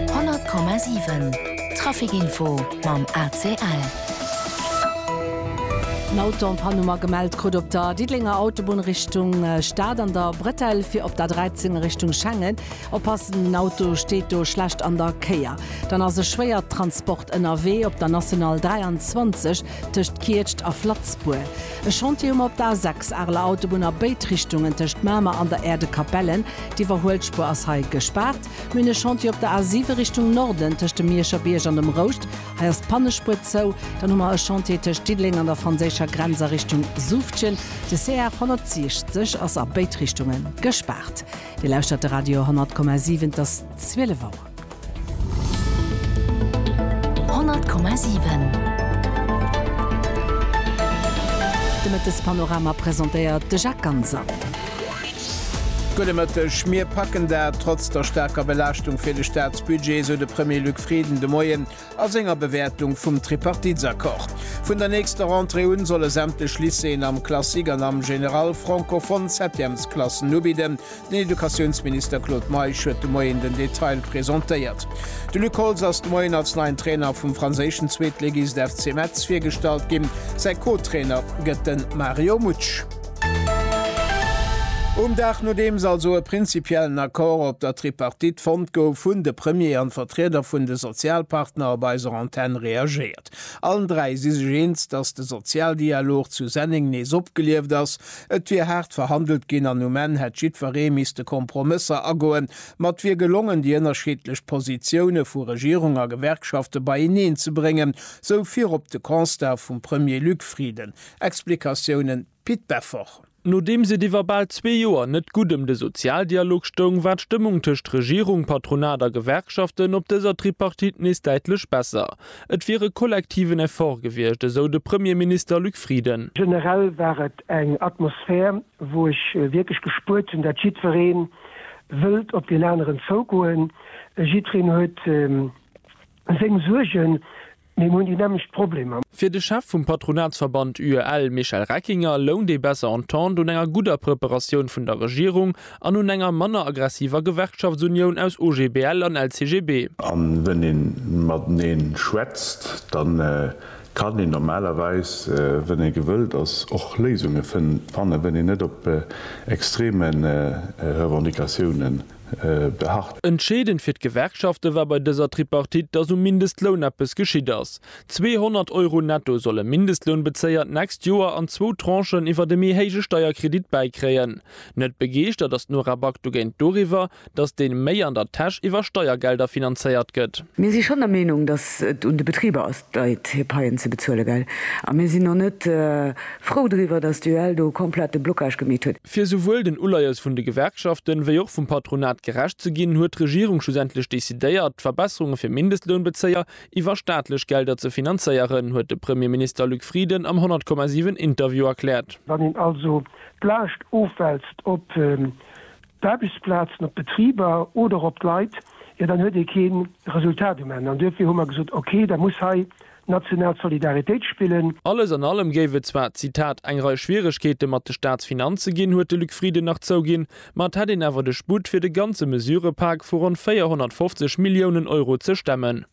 100,7 Traficinfo mam ACL. En Auto en Panne hu mer gemellt krut op der Diddelenger Autobunn Richtung Stad an der Bretelle fir op der 13 a Richtung Schengen. Oppassen, den Auto steet do schlecht an der Kéier. Dann ass e Schwéiertransport ënnerwee op der National 23 tëscht Kietscht a Flatzbuer, e Chantier um op d'A 6, Areler Autobunn a béid Richtungen, tëscht Mamer an der Erdekapellen, d'Iwwerhuelspuer ass hei gespaart, mir hunn e Chantier op der A 7 Richtung Norden, tëscht dem Mierscher Bierg an dem Rouscht, hei ass d'Pannespuer zou, dann hu mer e Chantier tëscht Diddeleng an der franséischer Grenz a Richtung Suuftgen, de CR 160 ass a béid Richtunge gespaart. Dir lauschtert de Radio 100,7, et ass 12 Auer. 100,7 De Mëttespanorama presentéiert de Jacques Ganser. Gudde Mëtteg. Mir packen dat. Trotz der staarker Belaaschtung fir de Staatsbudget, esou de Premier Luc Frieden de Moien. A senger Bewäertung vum Tripartitsaccord vun der nächster Rentrée un, solle sämtlech Lycéeën am Classique an am Général francophone Septièmesklassen ubidden. Den Educatiounsminister Claude Meisch huet de Moien den Detail presentéiert. De Luc Holtz ass de Moien als neien Trainer vum franséischen Zweetligist FC Metz virgestallt ginn. Säi Co-Trainer gëtt de Mario Mutsch. Um Dag nodeems also e prinzipiellen Accord op der Tripartite fonnt gouf, hunn de Premier an d'Vertrieder vun de Sozialpartner op eiser Antenn reagéiert. Allen dräi si sech eens, datt de Sozialdialog zu Senneng nees opgelieft ass. Et wier haart verhandelt ginn an um Enn hätt jiddweree misste Kompromësser agoen. Ma et wier gelongen, déi ënnerschiddlech Positioune vu Regierung a Gewerkschafte beieneen ze bréngen, sou virop de Constat vum Premier Luc Frieden. Explikatiounen, Pit Beffort. Nodeems et iwwer bal zwee Joer net gutt ëm de Sozialdialog stoung, war d'Stëmmung tëscht Regierung, Patronat a Gewerkschaften op dëser Tripartite nees däitlech besser. Et wier e kollektiven Effort gewiescht, esou de Premierminister Luc Frieden. Generell war et eng Atmosphär, wou ech wierklech gespuert hunn, datt jiddweree wëllt op deen aneren zougoen. Jiddwereen huet seng Suergen, Mir hunn déi nämmlecht Problemer. Fir de Chef vum Patronatsverband UEL Michel Reckinger lount ee besser Entente un enger gudder Preparatioun vun der Regierung an un enger manner aggressiver Gewerkschaftsunioun aus OGBL an LCGB. An wenn een mateneen schwätzt, dann kann een normalerweis, wenn een gewëllt ass, och Léisungen fannen, wenn een net op extremen Revendicatiounen beharrt. Entscheedend fir d'Gewerkschafte war bei dëser Tripartite, datt um Mindestloun eppes geschitt ass. 200 Euro netto solle Mindestlounbezéier d'nächst Joer an zwou Tranchen iwwert e méi héije Steierkredit bäikréien. Net begeeschtert ass d'Nora Back dogéint doriwwer, datt deen méi an der Täsch iwwer Steiergelder finanzéiert gëtt. Mir si schonn der Meenung, datt et un de Betriber ass, d'Leit hir Paien ze bezuelen, gell? A mir sinn och net frou driwwer, datt d'UEL do komplett de Blocage gemeet huet. Fir souwuel den Uleies vun de Gewerkschaften, wéi och vum Patronat gerecht ze ginn, huet d'Regierung schlussendlech decidéiert, d'Verbesserunge fir Mindestlounbezéier iwwer staatlech Gelder ze finanzéieren, huet de Premierminister Luc Frieden am 100,7 Interview erkläert. Wann een also d'Laascht ofwälzt op d'Aarbechtsplazen, op d'Betriber oder op d'Leit, jo dann huet ee kee Resultat um Enn. An duerfir hu mer gesot, okay, da muss hei national Solidaritéit spillen. Alles an allem géif et zwar, Zitat, eng Rei Schwieregkeete mat de Staatsfinanze ginn, huet de Luc Frieden nach zouginn, ma et hätt een awer de Sputt, fir de ganze Mesurëpak vu ronn 450 Milliounen Euro ze stemmen.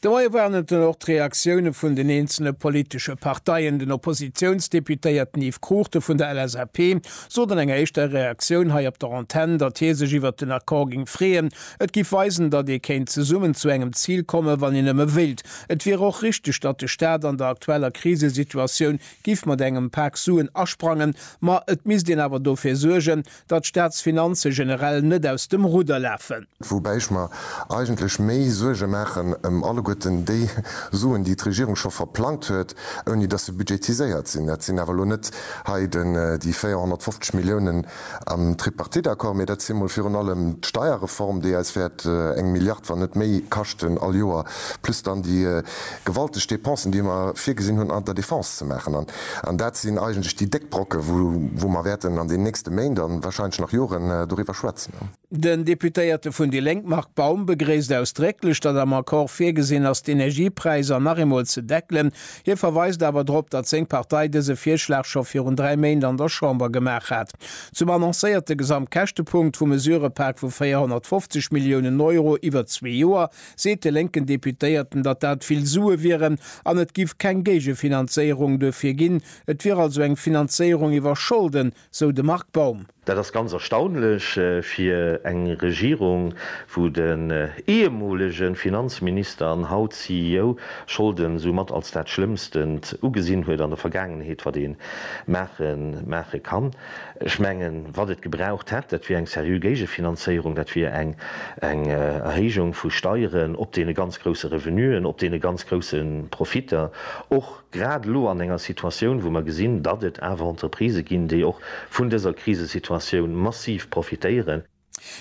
De Moie waren et dann och d'Reaktioune vun den eenzele politesche Parteien. Den Oppositiounsdeputéierten Yves Cruchten vun der LSAP sot an enger éischter Reaktioun hei op der Antenn, datt hie sech iwwert den Accord géing freeën, Et giff weisen, datt ee kéint zesummen zu engem Zil kommen, wann een nëmme wéilt. Et wier och richteg, datt de Staat an der aktueller Krisesituatioun giff mat engem Pak Suen asprangen, ma et misst een awer dofir suergen, datt d'Staatsfinanze generell net aus dem Rudder lafen. Woubäi ech mer eigentlech méi Suerge maachen ëm alleguerten déi Suen, déi d'Regierung scho verplangt huet, ouni datt se budgetiséiert sinn. Dat sinn awer elo net hei déi 450 Milliounen. Am Tripartite-Accord, mee dat si mol virun allem d'Steierreform, déi eis wäert eng Milliard, wann net méi, kaschten all Joer, plus dann déi gewalteg Dépensen, déi mer virgesinn hunn an der Defense ze maachen. An dat sinn eigentlech déi déck Brocken, wou mer wäerten an den nächste Méint a warscheinlech nach Joren doriwwer schwätzen. Den Deputéierte vun déi Lénk Marc Baum begréisst ausdrécklech, datt am Accord virgesinn ass, d'Energiepräisser nach eemol ze deckelen. Hie verweist awer drop, datt seng Partei dëse Virschlag scho virun dräi Méint an der Chamber gemaach hat. Zum annoncéierte Gesamtkäschtepunkt vum Mesurepak vu 450 Milliounen Euro iwwer zwee Joer seet de lénken Deputéierten, datt dat vill Sue wieren an et giff keng Géigefinanzéierung duerfir ginn. Et wier also eng Finanzéierung iwwer Scholden, sou de Marc Baum. Dat ass ganz erstaunlech fir eng Regierung, wou den ehemolege Finanzminister an haut CEO Scholden soumat als dat Schlëmmstent ugesinn huet an der Vergaangenheet, wat ee maache kann. Ech mengen, wat et gebraucht hätt, dat wier eng seriö Géigefinanzéierung, dat wier eng Erhéijung vu Steieren op deene ganz grousse Revenuen, op deene ganz grousse Profitter, och grad elo an enger Situatioun, wou mer gesinn, datt et awer Entreprisë ginn, déi och vun dëser Krisesituatioun massiv profitéieren.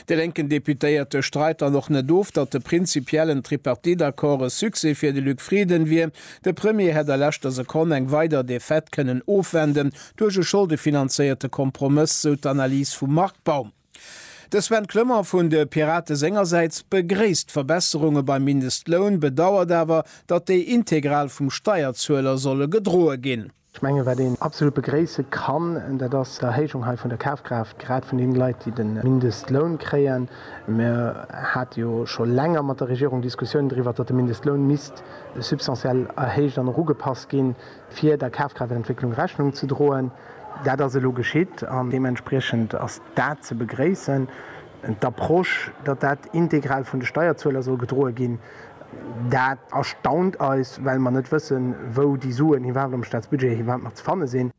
De lénken Deputéierte streit dann och net of, datt de prinzipiellen Tripartite-Accord e Succès fir de Luc Frieden wier. De Premier hätt a leschter Sekonn eng weider Defaite kënnen ofwenden duerch e scholdefinanzéierte Kompromëss, sou d'Analys vum Marc Baum. De Sven Clement vun de Pirate sengersäits begréisst d'Verbesserunge beim Mindestloun, bedauert awer, datt déi integral vum Steierzueler solle gedroe ginn. Ech mengen, wat een absolut begréisse kann, dat ass d'Erhéijung hei vun der Kafkraaft, grad vun deene Leit, déi de Mindestloun kréien. Mir hate jo scho länger mat der Regierung Diskussiounen driwwer, datt de Mindestloun misst substantiell erhéicht an och ugepasst ginn, fir der Kafkraaftentwécklung Rechnung ze droen. Dat ass elo geschitt an deementspriechend ass dat ze begréissen. D'Approche, datt dat integral vun de Steierzueler soll gedroe ginn, dat erstaunt eis, well mer net wëssen, wou déi Suen iwwerhaapt am Staatsbudget iwwerhaapt nach ze fanne sinn.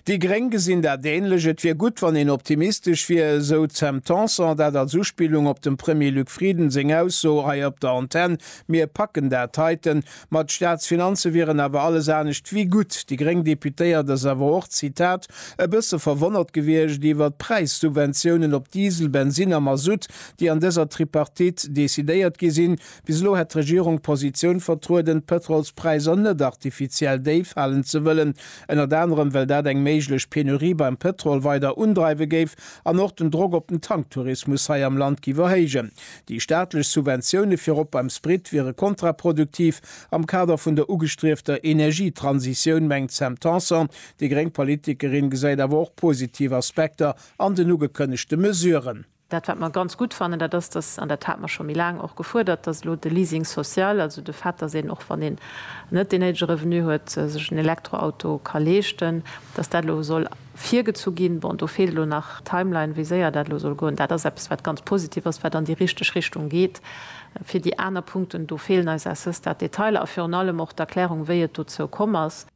Déi Gréng gesinn dat änlech. Et wier gutt, wann een optimistesch wier, esou d'Sam Tanson, dat als Uspillung op dem Premier Luc Frieden seng Ausso hei op der Antenn, Mir packen dat heiten. Ma d'Staatsfinanze wieren awer alles anescht ewéi gutt. Déi gréng Deputéiert ass awer och, Zitat, e bësse verwonnert gewiescht iwwert d'Präissubventiounen op Diesel, Bensinn a Masutt, déi an dëser Tripartite decidéiert gi sinn. Bis elo hätt d'Regierung d'Positioun vertrueden, d'Pëtrolspräisser net artifiziell déif halen ze wëllen, ënnert anerem well dat eng méiglech Penurie beim Pëtrol weider undreiwe géif an och den Drock op den Tanktourismus hei am Land géif erhéijen. Déi staatlech Subventioune fir op beim Sprit wiere kontraproduktiv am Kader vun der ugestriefter Energietransitioun, mengt d'Sam Tanson. Déi gréng Politikerin gesäit awer och positiv Aspekter an den ugekënnegte Mesuren. Dat wat mer ganz gutt fannen, dat ass, datt, an dat hate mer scho méi laang och gefuerdert, datt elo de Leasing social, also de Fait, datt een och wann een net dee néidege Revenu huet, sech en Elektroauto ka leeschten, datt dat elo soll, virgezu ginn. Bon, do feelt elo nach d'Timeline, wéi séier dat elo soll goen. Dat ass eppes, wat ganz positiv ass, wat an déi richteg Richtung geet. Fir déi aner Punkten, do feelen eis à ce stade d'Detailer a virun allem och d'Erklärung, wéi et dozou komm ass.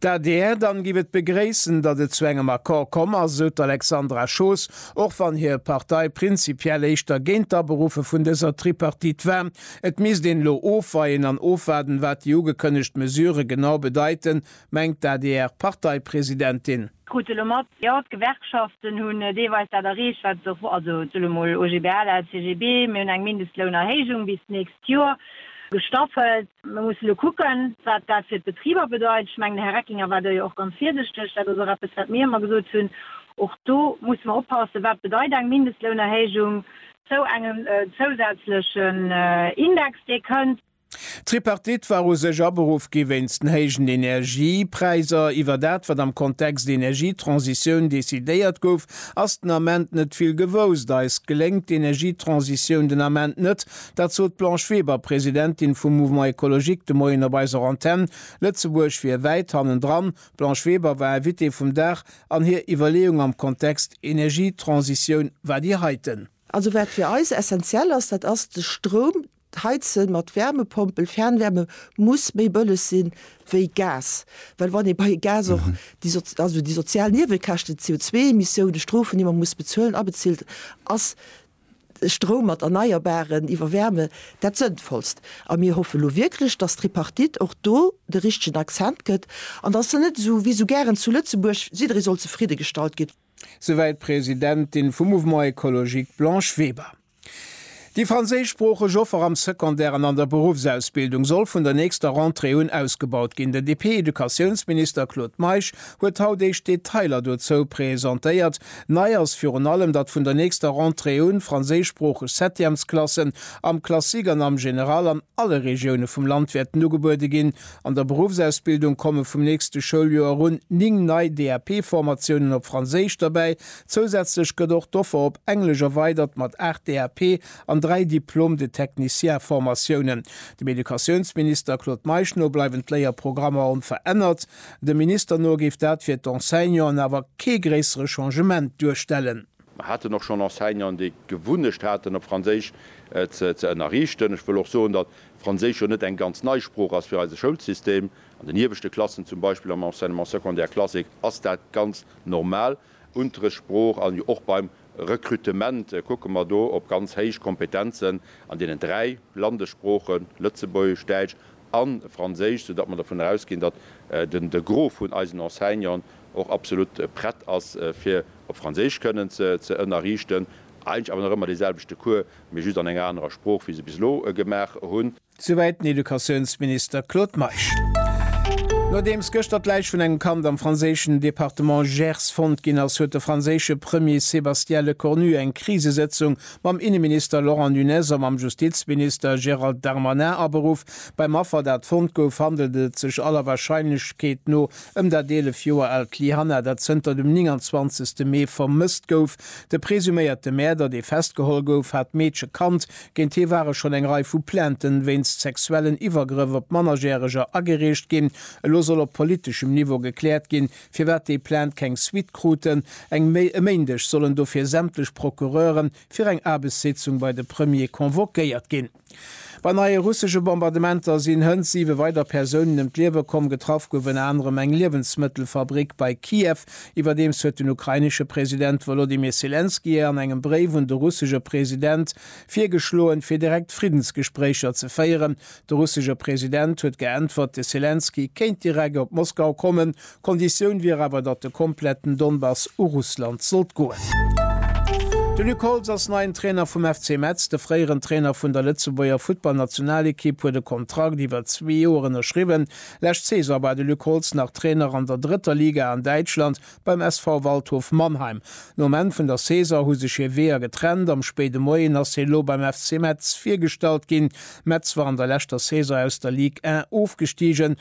D'adr, Dann giff et begréissen, datt et zu engem Accord komm ass, sou d'Alexandra Schoos, och wann hir Partei prinzipiell éischter géint d'Aberuffe vun dëser Tripartite war. Et misst een elo ofweien an ofwaarden, wat déi ugekënnegt Mesure genau bedeiten, mengt d'ADR-Parteipresidentin. Krut se elo mat, jo, d'Gewerkschaften hunn deelweis dat erreecht, wat se och wollten, also ech soen emol OGBL, LCGB, mir hunn eng Mindestlounerhéijung bis d'nächst Joer gestaffelt. Mir mussen elo kucken, wat dat fir d'Betriber bedeit. Ech mengen, de Här Reckinger war do jo och ganz virsichteg. Dat ass och eppes, wat mir ëmmer gesot hunn. Och do musse mer oppassen, wat bedeit eng Mindestlounerhéijung zou engem zousätzlechen Index, dee kënnt. D'Tripartite war u sech aberuff gi wéinst den héijen Energiepräiser. Iwwer dat, wat am Kontext Energietransitioun decidéiert gouf, ass den Ament net vill gewousst. Eis geléngt d'Energietransitioun den Ament net. Dat sot d'Blanche Weber, Presidentin vum Mouvement Ecologique, de Moien op eiser Antenn. Lëtzebuerg wier wäit hannendran. D'Blanche Weber war Invitée vum Dag an hir Iwwerleeung am Kontext Energietransitioun war déi heiten. Also wat fir eis essenziell ass, dat ass de Stroum. D'Heizen mat Wärmepompel, Fernwärme, muss méi bëlleg si wéi Gas. Well wann ee bei Gas och déi, also déi sozial Niewekäschten, d'CO2-Emissiounen, d'Strofen, déi mer muss bezuelen, abezilt, ass Stroum mat Erneierbaren iwwer Wärme dat Sënnvollst. A mir hoffe lo wierklech, dass d'Tripartite och do de richtegen Accent gëtt an dass se net esou wéi esou gären zu Lëtzebuerg, jidderee soll zefridde gestallt ginn. Souwäit d'Presidentin vum Mouvement Ecologique Blanche Weber. Déi franséischsproocheg Offer am Secondaire an an der Beruffsausbildung soll vun der nächster Rentrée un ausgebaut ginn. Den DP-Educatiounsminister Claude Meisch huet haut éischt Detailer dozou presentéiert. Nei ass virun allem, datt vun der nächster Rentrée un franséischsproocheg Septièmesklassen am Classique an am Général an alle Regioune vum Land wäerten ugebuede ginn. An der Beruffsausbildung komme vum nächste Schouljoer un 9 nei DAP-Formatiounen op Franséisch derbäi. Zousätzlech gëtt och d'Offer op Englesch erweidert mat 8 DAP an 3 Diplôme de technicien-Formatiounen. Dem Educatiounsminister Claude Meisch no bleiwen d'Léierprogrammer onverännert. Dem Minister no géif dat fir d'Enseignanten awer kee gréissere Changement duerstellen. Mer haten och schonn Enseignanten, déi d'Gewunnecht haten, op Franséisch ze ënnerriichten. Ech wëll och soen, datt Franséisch jo net eng ganz nei Sprooch ass fir eise Schoulsystem. An den ieweschte Klassen, zum Beispill am Enseignement secondaire classique, ass dat ganz normal Unterrichtssprooch. A jo och beim Rekrutement kucke mer do op ganz héich Kompetenzen an deenen dräi Landessproochen, Lëtzebuergesch, Däitsch a Franséisch, soudatt mer dervun ausginn, datt de Gros vun eisen Enseignanten och absolut prett ass fir op Franséisch kënnen ze ënnerriichten, eigentlech awer nach ëmmer dee selwechte Cours, mee just an enger anerer Sprooch, wéi se bis elo gemaach hu. Souwäit den Educatiounsminister Claude Meisch. Nodeems gëschter d'Läich vun engem Kand am franséischen Departement Gers fonnt ginn ass, huet de franséische Premier Sébastien Lecornu eng Krisesëtzung mam Inneminister Laurent Nunez a mam Justizminister Gérald Darmanin aberuff. Beim Affer, dat fonnt gouf, handelt et sech aller Warscheinlechkeet no ëm dat 11 Joer aalt Lyhanna, dat zënter dem 29 Mee vermësst gouf. De presuméierte Mäerder, dee festgeholl gouf, hat d'Meedche kannt. Géint hie ware schonn eng Rei vu Plainte wéinst sexuellen Iwwergrëff op Mannerjäreger agereecht ginn. Elo soll op politeschem Niveau gekläert ginn, firwat déi Plainte keng Suite kruten. Eng Méi e Méindeg sollen dofir sämtlech Procureuren fir eng Aarbechtssitzung bei de Premier convoquéiert ginn. Bei neie russesche Bombardementer sinn hënt siwe weider Persounen ëm d'Liewe komm. Getraff gouf ënner anerem eng Liewensmëttelfabrick bei Kiew. Iwwerdeems huet den ukrainesche President Wolodymyr Selenskyj an engem Bréif un de russesche President virgeschloen, fir direkt Friddensgespréicher ze féieren. De russesche President huet geäntwert, de Selenskyj kéint direkt op Moskau kommen, Konditioun wier awer, datt de kompletten Donbass u Russland sollt goen. De Luc Holtz ass neien Trainer vum FC Metz. De fréieren Trainer vun der Lëtzebuerger Futtballnationalekipp huet e Kontrakt iwwer zwee Joer ënnerschriwwen. Lescht Saison war de Luc Holtz nach Trainer an der drëtter Liga an Däitschland beim SV Waldhof Mannheim. Nom Enn vun der Saison hu sech hir Weeër getrennt. Am spéide Moien ass hie lo beim FC Metz virgestallt ginn. Metz war an der leschter Saison aus der Ligue 1 ofgestigen.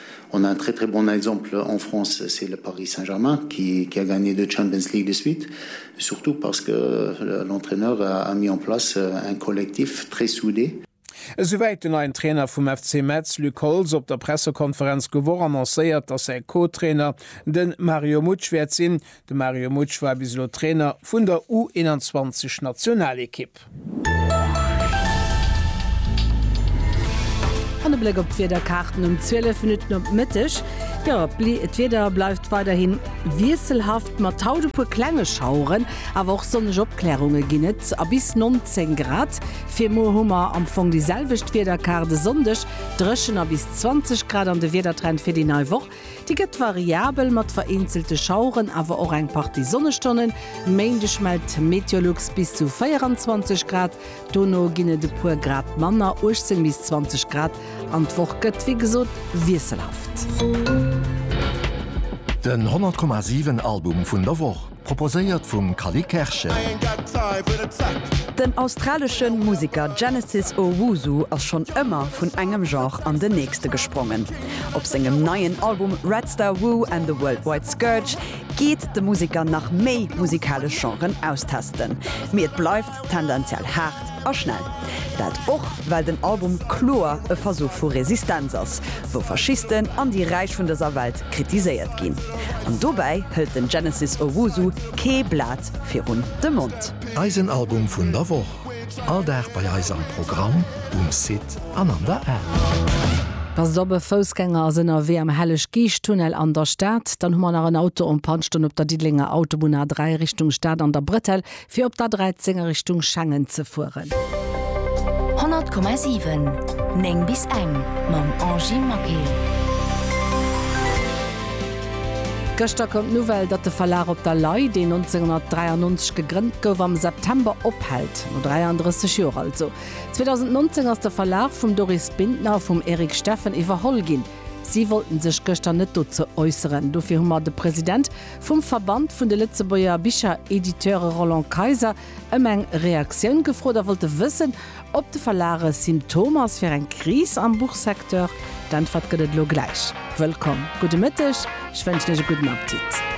On a un très très bon exemple en France, c'est le Paris Saint-Germain qui qui a gagné deux Champions League de suite, surtout parce que l'entraîneur a mis en place un collectif très soudé. Esouwäit den neien Trainer vum FC Metz, Luc Holtz, op der Pressekonferenz d'Gewoch annoncéiert, dass säi Co-Trainer de Mario Mutsch wäert sinn, De Mario Mutsch war bis elo Trainer vun der U21 Nationalekipp. An e Bléck op d'Wiederkaarten um 12 Minutten op de Mëtteg, jo d'Wieder bleift weiderhi wiesselhaft mat haut e puer klenge Schaueren, awer och sonneg Opklärunge ginn et a bis 19 Grad. Fir muer hu mer am Fong déi selwecht Wiederkaart, e Sonndeg dréchen a bis 20 Grad an de Wiedertrend fir déi nei Woch. Déi gëtt variabel mat vereenzelte Schaueren, awer och eng Partie Sonnestonnen. E Méindeg mellt d'Meteolux bis zu 24 Grad, dono ginn et e puer Grad manner, 18 bis 20 Grad, an d'Woch gëtt wéi gesot wiesselhaft. Den 100,7 Album vun der Woch. Proposéiert vum Cally Kerschen. Den australesche Museker Genesis Owusu ass schonn ëmmer vun engem Genre an den nächste gesprongen. Op sengem neien Album Red Star Woo and the Worldwide Scourge geet de Museker nach méi musikalesch Genren austesten. Mee et bleift tendenziell haart a schnell. Dat och well den Album kloer e Versuch vu Resistenz ass, wou Faschisten an déi Räich vun dëser Welt kritiséiert ginn. An dobäi hëlt den Genesis Owusu kee Blat virun de Mond. Eisen Album vun der Woch, all Dag bei eis am Programm, um Site an an der App. Passt op, e Foussgänger ass ënnerwee am Helleg-Geescht-Tunnel an der Stad. Dann hu mer nach en Auto en panne stoen op der Diddelenger Autobunn A3 Richtung Stad an der Bretelle. Fir op der 13 a Richtung Schengen ze fueren. 100,7, 9 bis eng, Mam Angie Maquet. Gëschter koum d'Nouvelle, datt de Verlag Op der Lay, deen 1993 gegrënnt gouf, am September ophält. No 33 Joer also. 2019 ass de Verlag vum Doris Bintner a vum Eric Steffen iwwerholl ginn. Si wollten sech gëschter net dozou äusseren. Dofir hu mer de President Vum Verband vun de Lëtzebuerger Bicherediteure Roland Kayser ëm eng Reaktioun gefrot a wollte wëssen, ob de Verlag e Symptom ass fir eng Kris am Buchsecteur. D'Äntwert gëtt et elo gläich. Wëllkomm, gudde Mëtteg, ech wënschen Iech e gudden Appetit.